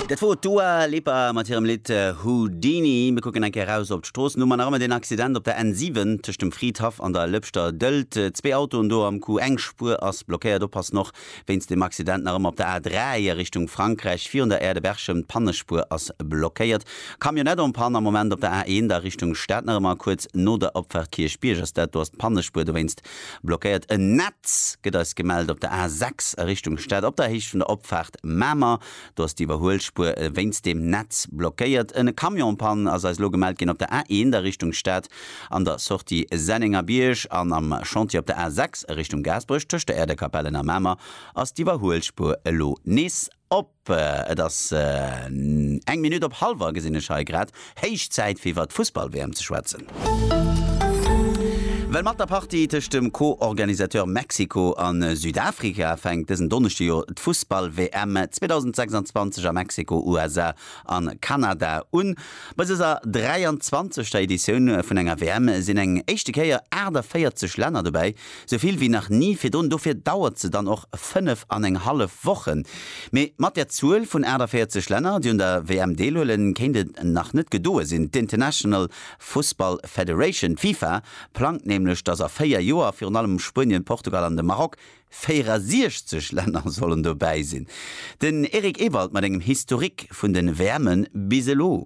Dat wor d'Dua Lipa mat hirem Lidd Houdini. Mir kucken eng Kéier raus op d'Stroossen, hu mer nach ëmmer deen Accident op der N7 tëscht dem Fridhaff an der Lëpschter Dëlt. Zwee Autoen do am Coup, eng Spuer ass blockéiert. Oppassen och wéinst deem Accident nach ëmmer op der A3 a Richtung Frankräich virun der Aire de Berchem, d'Pannespuer ass blockéiert. Camionnette en panne am Moment op der A1 a Richtung Stad, nach ëmmer kuerz no der Opfahrt Kierchbierg ass dat, do ass d'Pannespuer dowéinst Blockéiert en Netz, gëtt eis gemellt, op der A 6 a Richtung Stad op der Héicht vun der Opfaart Mamer. Do ass déi Iwwerhuelspuer wéinst deem Netz blockéiert. En Camionspann ass eis elo gemellt ginn op der A 1 a Richtung Stad an der Sortie Sennengerbierg. An am Chantier op der A 6 a Richtung Gaasperech tëscht der Äerdekapellen a Mamer ass d'Iwwerhuelspuer elo nees op. Et ass eng Minutt op hallwer, gesinn ech hei grad. Héich Zäit fir iwwert d'Fussball-WM ze schwätzen. Well mat der Partie tëscht dem Co-Organisateur Mexiko a Südafrika fänkt dësen Donneschde jo d'Fussball-WM 2026 a Mexiko, USA a Kanada un. Bei dëser 23. Editioun vun enger WM sinn eng éischte Kéier 48 Länner dobäi, Sou vill wéi nach ni virdrun. Dofir dauert se dann och fënnef an eng hallef Wochen. Mee mat där Zuel vun 48 Länner, déi un der WM deelhuelen, kéint et nach net gedoe sinn. D'International Fussball Federation, d'FIFA, plangt nämlech, datt a véier Joer virun allem Spuenien, Portugal an de Maroc, 64 Länner, sollen dobäi sinn. Den Eric Ewald mat engem Historique vun de WMe bis elo.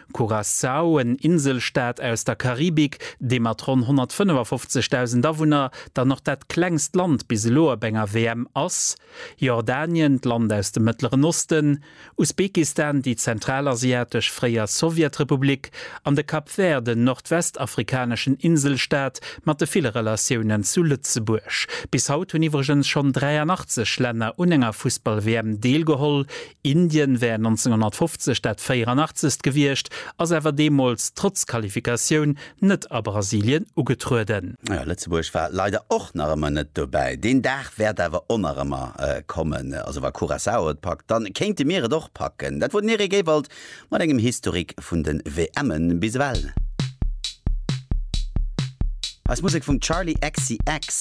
Curaçao, en Inselstaat aus der Karibik, dee mat ronn 155.000 Awunner dann och dat klengst Land bis elo op enger WM ass, Jordanien, d'Land aus dem Mëttleren Osten, Usbekistan, déi zentralasiatesch fréier Sowjetrepublik, an de Cap Vert, en nordwestafrikaneschen Inselstaat mat de ville Relatiounen zu Lëtzebuerg. Bis haut hunn iwwregens schonn 83 Länner un enger Fussball-WM deelgeholl, Indien wär 1950 dat 84. gewiescht, ass awer deemools trotz Qualifikatioun net a Brasilien ugetrueden. Jo, Lëtzebuerg war leider och nach ëmmer net dobäi. Deen Dag wäert awer onerëmmer kommen. Also wa Curaçao et packt, da kéinte mir et och packen. Dat wor den Eric Ewald mat engem Historik vun de WMe bis ewell. Eis Musek vum Charli XCX.